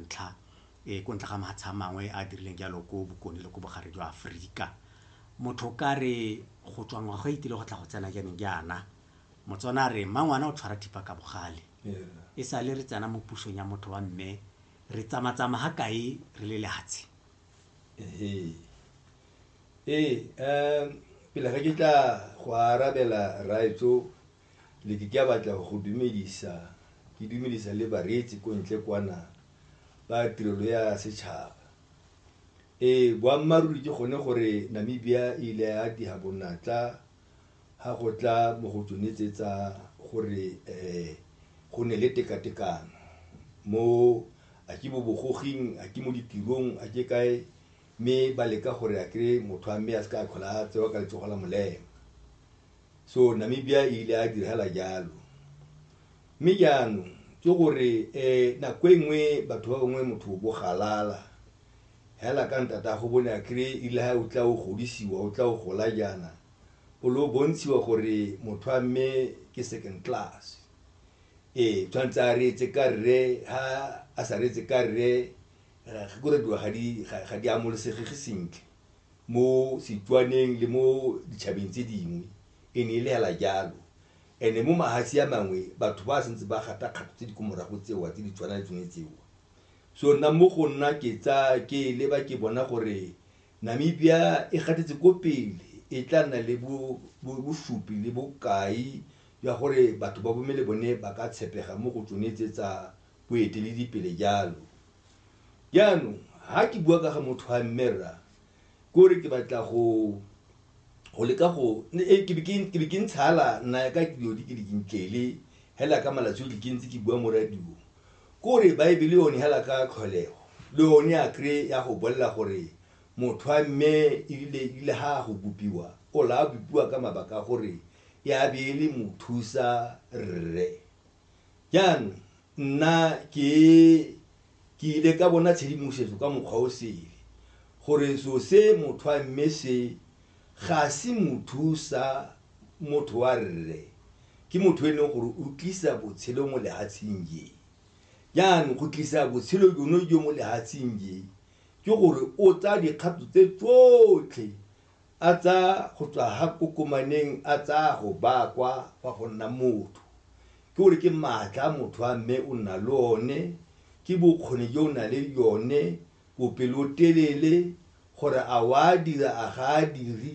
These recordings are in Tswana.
ntlha e ko ntle ga mahatsha a mangwe a dirileng jalo ko bokone le ko bogare jwa Aforika. Motho ka re go tswa ngwaga e itile go tla go tsena jaaneng jaana, Motswana a re mmangwana o tshwara thipa ka bogale. E sale re tsena mo pusong ya motho wa mme, re tsamatsama ga kae re le lehatshe. Ee, um pele ga ke tla go arabela rraetsho, Le ke ka batla go go dumedisa, ke dumedisa le bareetsi ko ntle kwana ba tirelo ya setšhaba. Ee, boammaaruri ke gone gore Namibia e ile ya diha bonatla ha go tla mo go tsone tse tsa gore um go ne le tekatekano mo a ke bobogoging a ke mo ditirong a ke kae mme ba leka gore a kry motho a mme a se ka a tlhola a tsewa ka letsogo la molema so namibia e ile a diragala jalo mme jaanong ke gore um nako e nngwe batho ba bangwe motho o bogalala hela ka ntata go bone a kry ile ga o tla o godisiwa o tla o gola jaana o le o bontshiwa gore motho a mme ke second class ee tshwanetse a reetse ka rre ha a sa reetse ka rre gore dilo ga di amolesegege sentle mo Setswaneng le mo ditšhabeng tse dingwe e ne e le hela jalo and-e mo mahatshe a mangwe batho ba santse ba gata kgato tse di ko morago tsewa tse di tshwana le tsone tseo so nna mo go nna ke tsa ke leba ke bona gore Namibia e gatetse ko pele e tla nna le bosupi le bokai jwa gore batho ba bone ba ka tshepega mo go tsone tse tsa boeteledipele jalo. Jaanong ha ke bua ka ga motho wa mme rra ke gore ke batla go go leka go eh, ke be ke ntshala nna ya ka dilo di ke di ntlele hela ka malatsi otlhe ke ntse ke bua mo radio ke gore baebele yone hela ka tlholego le yone a kry ya go bolela gore motho wa mme ebile ebile ha go bopiwa o la bopiwa ka mabaka gore ya be e le mothusa rre jaanong nna ke ke ile ka bona tshedimosetso ka mokgwa o sele gore so se motho a mme se ga se motho sa motho wa rre ke motho e leng gore o tlisa botshelo mo lehatsheng je jaanong go tlisa botshelo jono jo mo lehatsheng je ke gore o tsaya dikgato tse tsotlhe a tsaya go tswa ha kokomaneng a tsaya go baya kwa fa go nna motho. Ke gore ke maatla a motho a mme o nna le one, ke bokgoni jo o nang le jone, bopelotelele, gore a wa dira a ga a diri,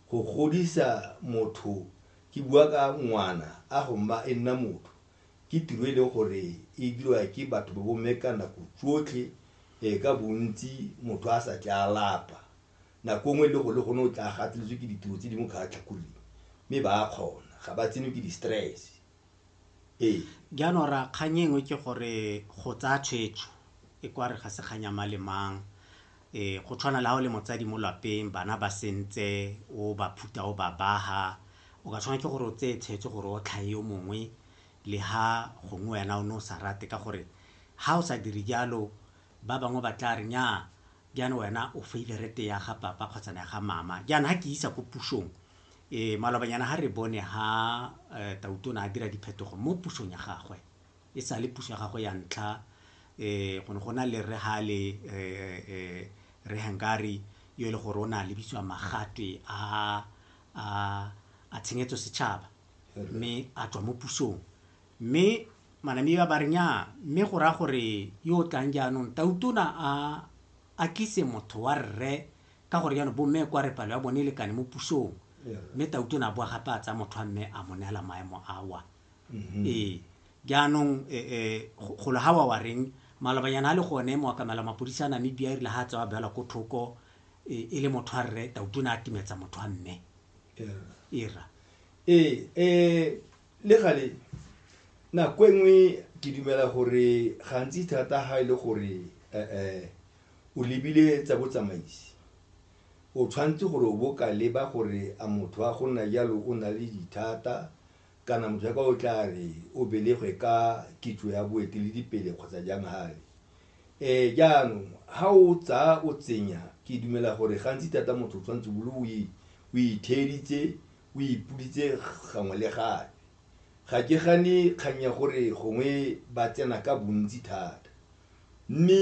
go godisa motho, ke bua ka ngwana a go mma e nna motho, ke tiro e leng gore e dirwa ke batho ba bomme ka nako tsotlhe ka bontsi motho a sa tle a lapa. nako nngwe e le go le gone o tla gateletswe ke ditiro tse dingwe kgatlha kgole mme ba a kgona ga ba tsenwe ke di-stress ee jaanong ra kgang engwe ke gore go tsaya tshwetso e kware ga se kganya ma le mang um go tshwana le ga o le motsadi mo lapeng bana ba sentse o ba phuta o ba baha o ka tshwana ke gore o tseye tshwetso gore o tlhae yo mongwe le ha gongwe wena o ne o sa rate ka gore ha o sa dire jalo ba bangwe ba tla re nyaa Jaana wena o favorite ya ga papa kgotsa na ga mama jaana ha ke isa ko pusong e malobanyana ha re bone ha eh, tautona a dira diphetogo mo pusong ya gagwe e sa le puso ya gagwe ya ntlha eh go ne go na le re ha le eh, eh, re hangari yo e le gore o ne a lebitswa magatwe a a a tshenyetso setšhaba mme a tswa mo pusong Mme Manamiwa ba re nnyaa mme go raya gore yo o tlang jaanong Tautona a a tlise motho wa rre ka gore jaanong bomme kwa re palo ya bone e lekane mo pusong. Mme Tautona a boa gape a tsaya motho wa mme a mo neela maemo awa. Ee, jaanong golo ga wa wa reng malobanyana a le gone moakamela mapodisa a Namibia e rile ga a tsewa a beelwa ko thoko e le motho wa rre Tautona a timetsa motho wa mme. Ee, rra. Ee, um Le gale nako e nngwe ke dumela gore gantsi thata ga e le gore um o lebile tsa botsamaisi o tshwanetse gore o bo ka leba gore a motho wa go nna jalo o na le dithata kana motho ya ka o tla re o belegwe ka kitso ya boeteledipele kgotsa jang gale um jaanong ga o tsaya o tsenya ke dumela gore gantsi thata motho o tshwanetse bolo o itheeditse o ipoditse gangwe le gape. Ga ke gane kgang ya gore gongwe ba tsena ka bontsi thata mme.